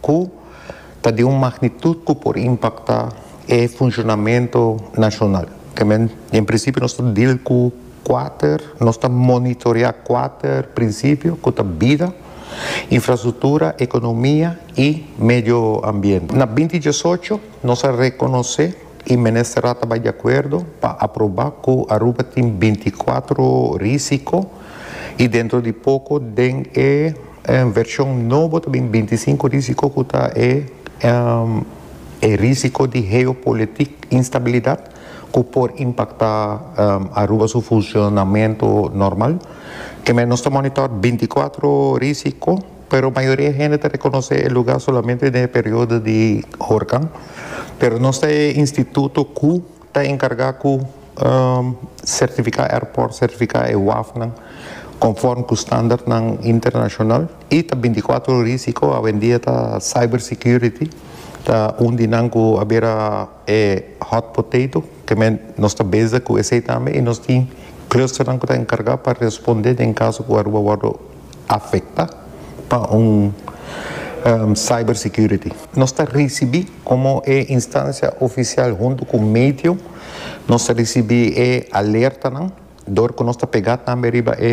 cu ta di un magnitud cu por impacta e funcionamento nacional. Temen, en principio nos ta deal cu cuater, nos ta monitorea cuater principio cu ta bida, infrastructura, economia y medio ambiente. Na binti diesocho nos a reconoce y Ministerrad ta bay di acuerdo pa aproba cu Aruba tin binti cuatro risico y dentro di poco den e. E vershon nobo ta bin binti sinku risiko ku ta e e risiko di heopolitik instabilidat ku por impaktá Aruba su funshonamentu normal. Kemey nos ta monitor binti kuatro risiko pero mayoria e hende ta rekonosé e lugá solamente den e periodo di horkan pero nos ta e instituto ku Ta enkargá ku sertifiká airport, sertifiká e wafnan konform ku standartnan internashonal i ta bintikwatro ora risiko. Awendia ta cyber security ta un di nan ku a bira e hot potato keme nos ta bezig ku esei tambe i nos tin clusternan ku ta enkargá pa responde den kaso ku Aruba wòrdu. afecta pa un cyber security. Nos ta ricibi como e instancia oficial hunto cu medio nos ta ricibi e alertanan dor cu nos ta pega tambe riba e.